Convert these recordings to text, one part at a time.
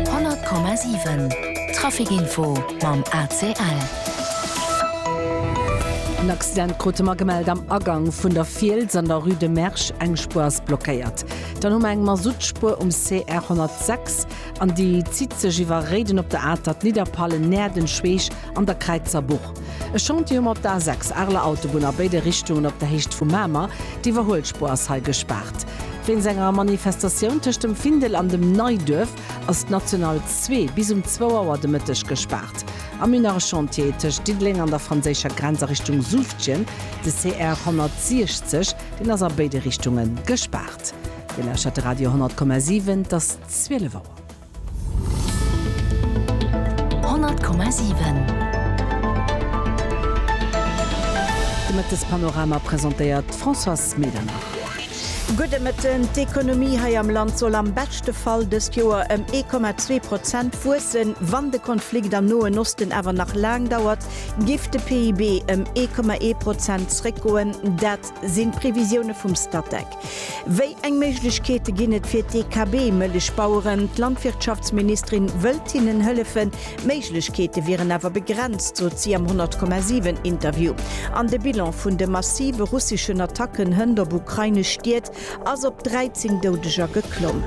100,7 Trafic Info mam ACL. En Accident krute mer gemellt am Agang vun der Fiels an der Rue de Mersch. Eng Spuer ass blockéiert. Dann hu mer eng Masuttspuer um CR 106 an déi zitt sech iwwer Réiden op der Atert, Nidderpallen, Näerden, Schweech An der Kräizer Buch e Chantier um op der A6, Arler Autobunn a béide Richtungen op der Héicht vu Mamer. D'Iwwerhuelspuer ass hei gespaart. Wéinst enger Manifestatioun tëscht dem Findel an dem Neiduerf ass d'National 2 bis um zwou Auer de Mëtteg gespaart. Am Min nach e Chantier tëscht Diddeleng an der franséischer Grenz a Richtung Suuftgen, de CR 160. Deen ass a béide Richtunge gespaart. Dir lauschert de Radio 100,7, et ass 12 Auer. 100,7. De Mëttespanorama presentéiert d'Françoise Medernach. Gudde Mëtten. D'Ekonomie hei am Land soll am beschte Fall dëst Joer ëm 1,2 Prozent wuessen. Wann de Konflikt am Noen Osten awer nach laang dauert, giff de PIB ëm 1,1 Prozent zréckgoen. Dat sinn d'Previsioune vum Statec. Wéi eng Méiglechkeete ginn et fir d'EKB-Mëllechbaueren? D'Landwirtschaftsministerin wëllt hinnen hëllefen, d'Méiglechkeete wieren awer begrenzt, sot si am 100,7 Interview. An de Bilan vun de massive russeschen Attacken hënt op ukrainesch Stied ass op 13 Doudeger geklomm.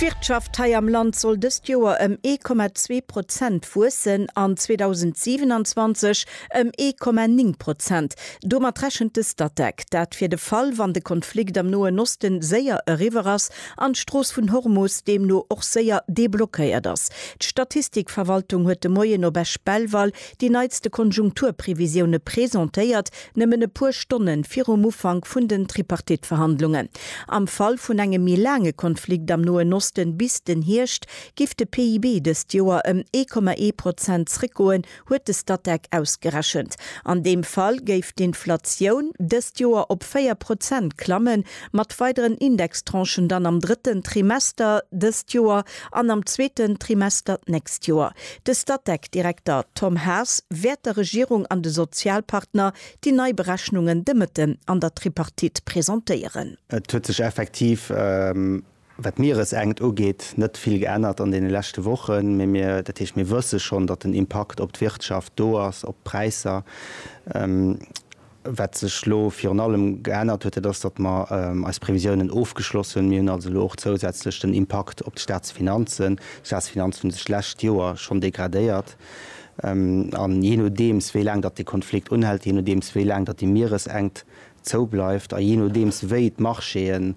D'Wirtschaft hei am Land soll dëst Joer ëm 1,2 Prozent wuessen an 2027 Ëm ee Komma néng Prozent. Domat rechent de Statec. Dat fir de Fall, wann de Konflikt am Noen Oste séier eriwwer ass an d'Strooss vun Hormus deemno och séier deblockéiert ass. D'Statistikverwaltung huet de Moien op Esch-Belval déi neitste Konjunkturprevisioune presentéiert, nëmmen e puer Stonne virum Ufank vun den Tripartite-Verhandlungen. Am Fall vun engem méi laange Konflikt am Noen Oste bis den Hierscht, géif de PIB dëst Joer ëm ee Komma ee Prozent zréckgoen, huet de Statec ausgerechent. An deem Fall géif d'Inflatioun dëst Joer op 4 Prozent klammen, mat weideren Indextranchen dann am drëtten Trimester dëst Joer an am zweeten Trimester d'nächst Joer. De Statec-Direkter Tom Haas wäert der Regierung an de Sozialpartner déi nei Berechnungen de Mëtten an der Tripartite presentéieren. Et huet sech effektiv Wat d'Mieresenkt ugeet, net vill geännert an deene leschte Wochen, mee mir, dat heescht, mir wësse schonn, datt den Impakt op d'Wirtschaft do ass, op d'Präisser. Wat sech elo virun allem geännert huet, dat ass, datt mer eis Previsiounen ofgeschloss hunn. Mir hunn also elo och zousätzlech den Impakt op d'Staatsfinanzen. D'Staatsfinanzen hunn sech d'lescht Joer schonn degradéiert. A jee nodeems, wéi laang datt dee Konflikt unhält, jee nodeems, wéi laang datt déi Mieresenkt zou bleift a jee nodeems wéi d'Marchéë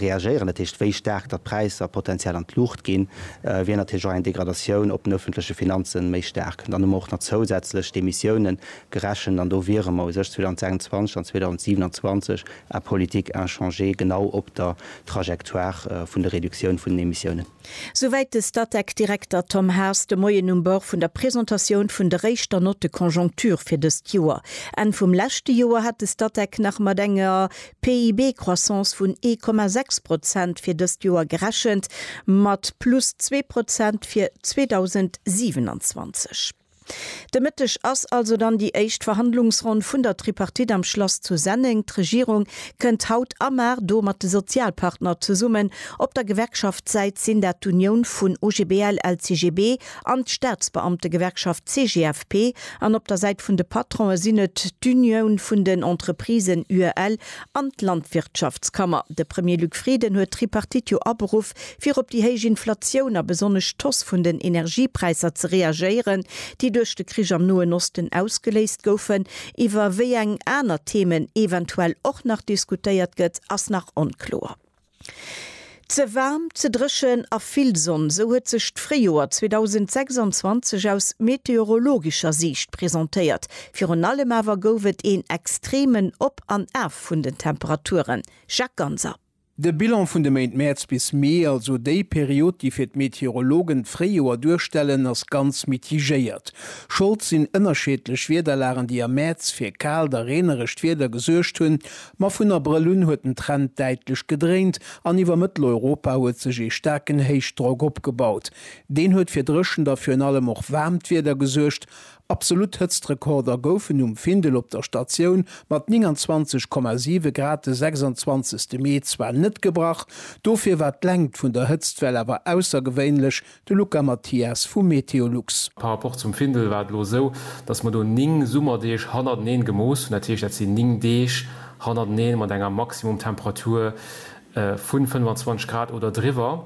reagéieren, dat heescht wéi staark datt d'Präisser potenziell an d'Luucht ginn, wier natierlech och eng Degradatioun op den ëffentleche Finanze méi staark. Dann hu mer och nach zousätzlech d'Emissioune gerechent an do wiere mer u sech 2026 an 2027 en politique inchangée genau op der Trajectoire vun der Reduktioun vun den Emissiounen. Souwäit de Statec-Direkter Tom Haas de Moien um Bord vun der Presentatioun vun der éischter Note de conjoncture fir dëst Joer. Enn vum leschte Joer hat de Statec nach mat enger PIB-Croissance vun ee Komma sechs Prozent fir dëst Joer gerechent, mat plus zwee Prozent fir 2027. De Mëtteg ass also dann déi éischt Verhandlungsronn vun der Tripartite am Schlass zu Senneng. D'Regierung kënnt haut a Mar do mat de Sozialpartner zesummen. Op der Gewerkschaftssäit sinn dat d'Unioun vun OGBL, LCGB an d'Staatsbeamtegewerkschaft CGFP an op der Säit vun de Patronen sinn et d'Unioun vun den Entreprisen, UEL, an d'Landwirtschaftskammer. De Premier Luc Frieden huet d'Tripartite jo aberuff fir op déi héich Inflatioun a besonnesch d'Hausse vun den Energiepräisser ze reagéieren, déi duerch de Krich am Noen Osten ausgeléist goufen. Iwwer wéi eng aner Themen eventuell och nach diskutéiert gëtt, ass nach onkloer. Ze waarm, ze dréchen a vill Sonn, esou huet sech d'Fréijoer 2026 aus meteorologescher Siicht presentéiert. Virun allem awer gouf et een extremen Op an Af vun den Temperaturen. Jacques Ganser. De Bilan vun de Méint Mäerz bis Mee, also déi Period, déi fir d'Meteorologen d'Fréijoer duerstellen, ass ganz mitigéiert. Schold sinn ënnerscheedlech Wiederlagen, déi am Mäerz fir kaalt a reenerescht Wieder gesuergt hunn. Ma vun Abrëll un huet den Trend däitlech gedréint an iwwer Mëtteleuropa huet sech ee staarken Héichdrock opgebaut. Deen huet fir dréchent a virun allem och waarmt Wieder gesuergt. Absolutt Hëtztrekorder goufen um Findel op der Statioun mat 29,7 Grad de 26 Mee zwar net gebrach, dofir war d'Längt vun der Hëtztwell awer aussergewéinlech, de Luca Mathias vu Meteolux. Par rapport zum Findel war et elo esou, datt mer do 9 Summerdeeg hannerteneen gemooss hunn. Dat heescht, dat sinn 9 Deeg hannerteneen mat enger Maximumtemperatur vun 25 Grad oder driwwer,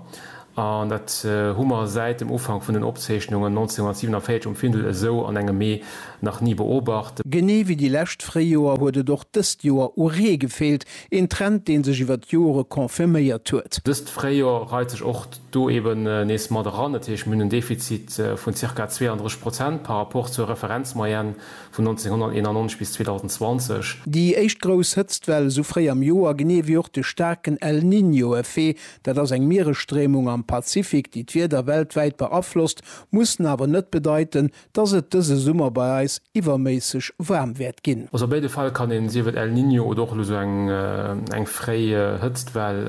an dat hu mer säit dem Ufank vun den Opzeechnungen 1947 um Findel esou an engem Mee nach ni beobacht. Genee wéi déi lescht Fréijoer huet et och dëst Joer u Ree gefeelt, een Trend dee sech iwwer d'Jore confirméiert huet. Dëst Fréijoer reit sech och do eben nees mat eran, dat heescht mir hunn en Defizit vun zirka 32 Prozent par rapport zur Referenzmoyenne Vun 1991 bis 2020. Déi éischt grouss Hëtztwell esou fréi am Joer, genee ewéi och de staarken El Niño-Effet, dat ass eng Mieresstréimung am Pazifik, déi d'Wieder weltwäit beaflosst, mussen awer net bedeiten, dass et dëse Summer bei eis iwwerméisseg waarm wäert ginn. Also a béide Fäll kann een, sief et El Niño oder och elo esou eng fréi Hëtztwell,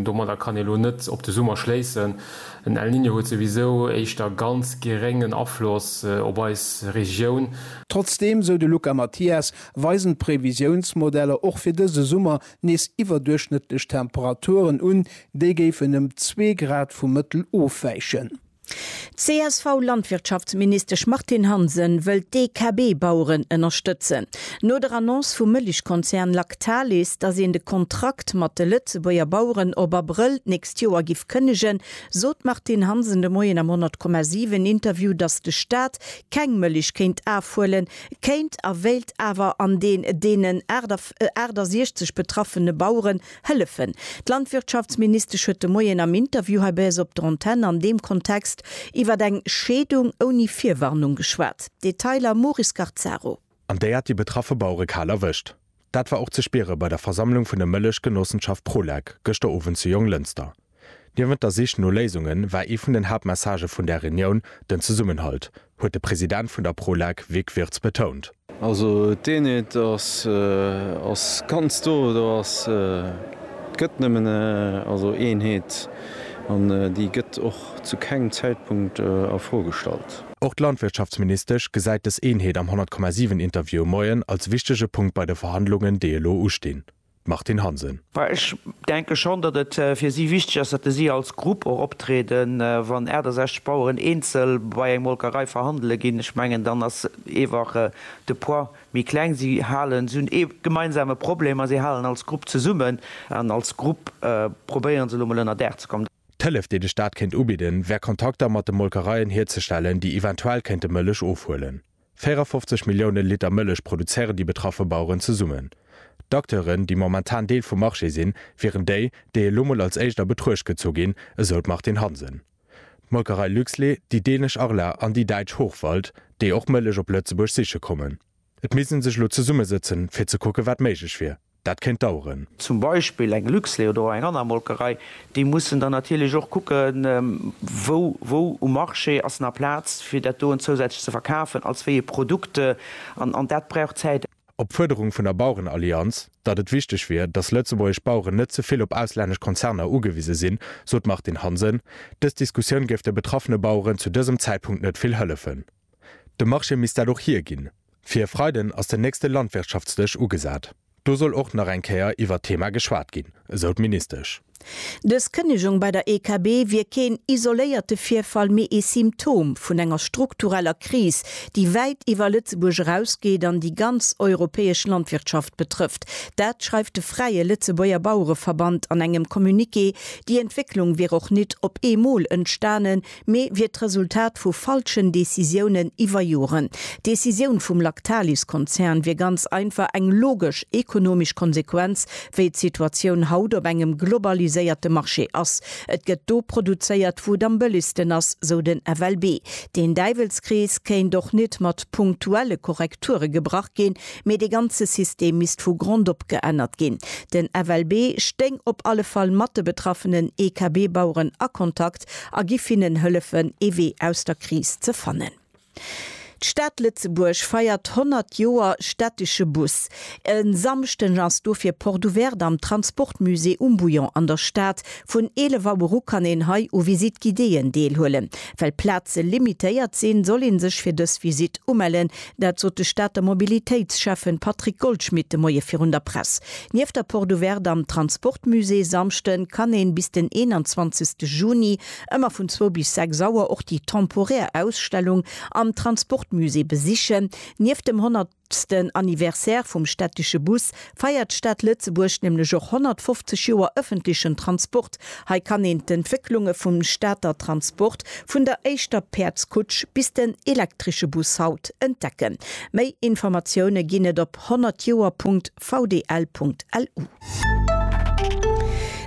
domadder kann ee elo net op de Summer schléissen. Den El Niño huet souwisou éischter ganz geréngen Afloss op eis Regioun. Trotzdeem, sou de Luca Mathias, weisen d'Previsiounsmodeller och fir dëse Summer nees iwwerduerchschnëttlech Temperaturen un, déi géifen ëm zwee Grad vum Mëttel ofwäichen. D'CSV-Landwirtschaftsministesch Martine Hansen wëll d'DKB-Baueren ënnerstëtzen. No der Annonce vum Mëllechkonzern Lactalis, datt een de Kontrakt mat de Lëtzebuerger Baueren op Abrëll nächst Joer giff kënnegen, sot d'Martine Hansen de Moien am 100,7 Interview, datt de Staat keng Mëlich kéint afhuelen, kéint a wéilt awer an deen deenen 68 betraffene Baueren hëllefen. D'Landwirtschaftsministesch huet de Moien am Interview hei bei eis op der Antenn an deem Kontext iwwert eng Scheedung ouni Virwarnung geschwat. Detailer Maurice Garzaro. an déi hat déi betraffe Bauere kal erwëscht. Dat war och ze spiere bei der Versammlung vun der Mëllechgenossenschaft Prolec gëschter Owend zu Jonglënster. Niewent der Sich no Léisunge war ee vun den Haaptmessagë vun där Reunioun den Zesummenhalt, huet de President vun der Prolec Vic Wirtz betount. Also d'Eenheet ass ass ganz do, do ass et gëtt nëmmen also Eenheet an déi gëtt och zu kengem Zäitpunkt a Fro gestallt. Och d'Landwirtschaftsministesch gesäit dës Eenheet am 100,7 Interview e Moien als wichtege Punkt bei de Verhandlungen, déi elo ustinn. D'Martine Hansen. Ech denke schonn, datt et fir si wichteg ass, datt si als Grupp och optrieden. Wann 68 Baueren eenzel bei eng Molkerei verhandele ginn, ech mengen, dann ass eewach de Poids méi kleng. Si halen, si hunn ee gemeinsame Problem a si halen als Grupp zesummen an als Grupp probéiere se elo emol ënnerdaach ze kommen. D'Hëllef, déi de Staat kéint ubidden, wär Kontakter mat de Molkereien hierzestellen, déi eventuell kéinte Mëllech ofhuelen. 54 Millioune Liter Mëllech produzéieren déi betraffe Baueren zesummen. D'Acteuren, déi momentan Deel vum Marché sinn, wieren déi, déi elo mol als éischt a Betruecht gezu ginn, esou d'Martine Hansen. D'Molkerei Luxlait, déi dänesch Arla an déi däitsch Hochwald, déi och Mëllech op Lëtzebuerg siche kommen. Et misst ee sech elo zesummesëtzen, fir ze kucken, wat méiglech wier. Dat kéint daueren. Zum Beispill eng Luxlait oder och eng aner Molkerei, déi mussen dann natierlech och kucken, wou, wou um Marché ass nach Plaz, fir dat doen zousätzlech ze verkafen, als wéi ee Produkt. An, an dat brauch Zäit. Op d'Fuerderung vun der Bauerenallianz, datt et wichteg wier, datt lëtzebuergesch Baueren net ze vill op auslännesch Konzerner ugewise sinn, sot d'Martine Hansen, dës Diskussioun géif de betraffene Baueren zu dësem Zäitpunkt net vill hëllefen. De Marché misst dat och hierginn. Fir e Freiden ass den nächste Landwirtschaftsdësch ugesat. Do soll och nach eng Kéier iwwert d'Thema geschwat ginn, esou d'Ministesch. Dës Kënnegung bei der EKB wier keen isoléierte Virfall, mee ee Symptom vun enger struktureller Kris, déi wäit iwwer Lëtzebuerg erausgeet an déi ganz europäesch Landwirtschaft betrëfft. Dat schreift de Fräie Lëtzebuerger Bauereverband an engem Communiqué. Déi Entwécklung wier och nit op eemol entstanen, mee wier d'Resultat vu falschen Decisiounen iwwer Joren. D'Decisioun vum Lactalis-Konzern wier ganz einfach eng logesch ekonomesch Konsequenz, wéi d'Situatioun haut op engem globaliséierte Marché ass. Et gëtt do produzéiert, wou et am bëllegsten ass, sou den FLB. Deen Däiwelskrees kéint och net mat punktuelle Korrekture gebrach ginn, mee dee ganze System misst vu Grond op geännert ginn. Den FLB stéing op alle Fall mat de betraffenen EKB-Baueren a Kontakt, Kontakt a giff hinnen hëllefen ee Wee aus der Kris ze fannen. D'Stad Lëtzebuerg feiert 100 Joer städtesche Bus. E Samschden ass dofir Porte Ouverte am Transportmusée um Bouillon an der Stad. Vun 11 Auer u kann een hei u Visite Guidéeën deelhuelen. Well Plaze limitéiert sinn, soll ee sech fir dës Visitt umellen, Dat sot de Stater Mobilitéitsschäffen Patrick Goldschmidt de Moie virun der Press. Nieft der Porte Ouverte am Transportmusée Samschde kann ee bis den 21 Juni ëmmer vun zwou bis sechs Auer och déi temporär Ausstellung am Transportmusée besichen. Nieft dem honnertsten Anniversaire vum stättesche Bus feiert d'Stad Lëtzebuerg nämlech och 150 Joer ëffentlechen Transport. Hei kann een d'Entwécklunge vum Stater Transport vun der éischter Päerdskutsch bis den elektresche Bus haut entdecken. Méi Informatioune ginn et op 100 Joer.vdl.lu.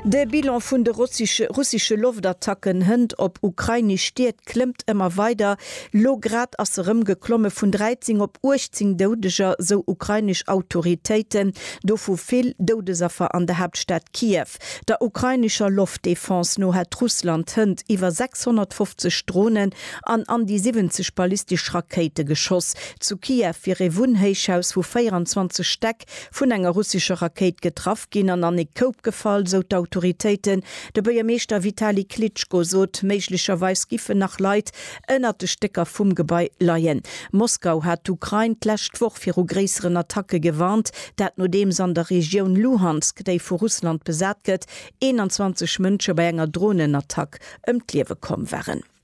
De Bilan vun de russesche Loftattacken hënt op ukrainesch Stied klëmmt ëmmer weider. Lo grad ass se rëm geklomme vun 13 op 18 Doudeger, sou ukrainesch Autoritéiten, dovu vill Doudesaffer an der Haaptstad Kiew. Der ukrainescher Loftdefense no hätt Russland hënt iwwer 650 Dronen an an déi 70 ballistesch Rakéite geschoss. Zu Kiew wier ee Wunnhéichhaus vu 24 Stäck Donezk vun enger russescher Rakéit getraff ginn an an ee Koup gefall, sou d'Autoritéiten. De Buergermeeschter Vitali Klitschko sot, méiglecherweis giffen nach Leit ënnert de Stécker vum Gebai leien. Moskau hat d'Ukrain d'lescht Woch viru gréisseren Attacke gewarnt, dat nodeems an der Regioun Luhansk, déi vu Russland besat gëtt, 21 Mënsche bei enger Dronenattack ëm d'Liewe komm waren.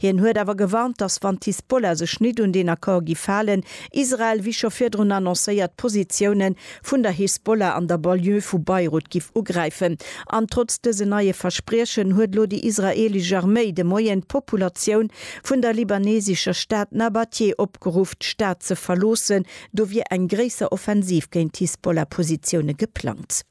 Hien huet awer gewarnt, datt wann d'Hisbollah sech nit un deen Accord giff halen, Israel, wéi scho virdrun annoncéiert, d'Positioune vun der Hisbollah an der Banlieue vu Beirut giff ugräifen. An trotz dësen neie Verspriechen huet elo déi israeelesch Arméi de Moien d'Populatioun vun der libanesescher Stad Nabattieh opgeruff, d'Stad ze verloossen. Do wier eng gréisser Offensiv géint d'Hisbollah-Positioune geplangt.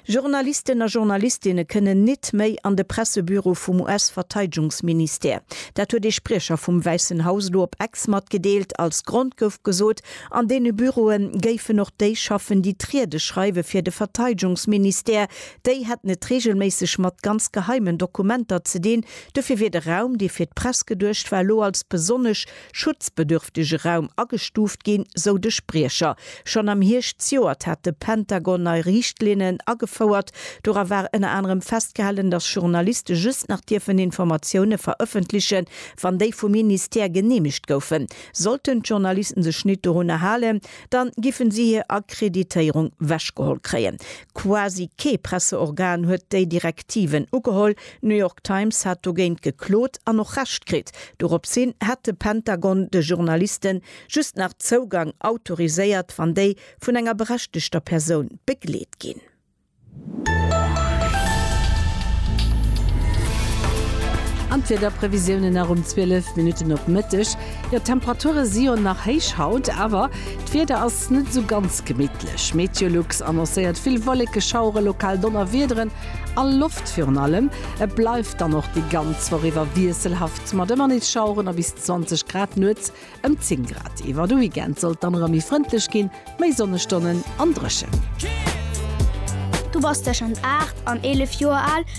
Journalisten a Journalistinne kënnen nit méi an de Pressebüro vum US-Verteidgungsministère. Dat huet ee Spriecher vum Wäissen Haus elo op Ex matgedeelt. Als Grond gouf gesot, an deene Büroe géifen och déi schaffen, déi d'Riede schreiwe fir de Verteidgungsministère. Déi hätten et reegelméisseg mat ganz geheimen Dokumenter ze dinn. Dofir wier de Raum, dee fir d'Press geduecht war, elo als besonnesch schutzbedürftege Raum agestuuft ginn, sou de Spriecher. Schonn am Hierscht zejoert hat de Pentagon nei Riichtlinnen agefouert. Dora war ënner anerem festgehalen, datt Journaliste just nach dierfen Informatioune verëffentlechen, wann déi vum Ministère geneemegt goufen. Sollten d'Journalisten sech nit dorunner halen, dann giffen si hir Akkreditéierung wechgeholl kréien. Quasi kee Presseorgan huet déi Direktiven ugeholl. D'New York Times hat dogéint geklot an och Recht kritt. Dorops hin hätt de Pentagon de Journalisten just nach Zougang autoriséiert, wann déi vun enger berechtegter Persoun begleet ginn. An d'Wiederprevisiounen nach um 12 Minutten op Mëtteg. Jo, d'Temperature si jo nach héich haut, awer d'Wieder ass. Ass net esou ganz gemittlech. Meteolux annoncéiert vill Wolleke, Schauere, lokal Donnerwiederen a Loft virun allem. Et bleift dann och déi ganz Woch iwwer wiesselhaft mat ëmmer nees Schaueren a bis 20 Grad, nuets ëm 10 Grad. Iwwer de Weekend soll et dann erëm méi frëndlech ginn, méi Sonnestonnen an dréchen. Du bass tëschent 8 an 11 Joer al?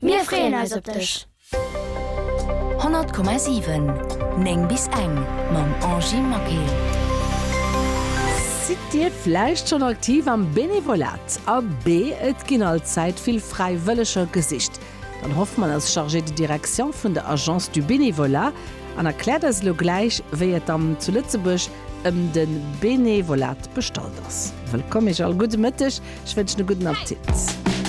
Mir freeën eis op dech! 100,7 9 bis eng mam Angie Maquet. Sidd Dir vläicht schonn aktiv am Benevolat? Abee, et ginn all Zäit vill Fräiwëlleger gesicht. D'Anne Hoffmann ass Chargée de direction vun der Agence du Bénévolat an erkläert eis elo gläich, wéi et am zu Lëtzebuerg ëm de Benevolat bestallt ass. Wëllkomm Iech all, gudde Mëtteg, ech wënschen e gudden Appetit.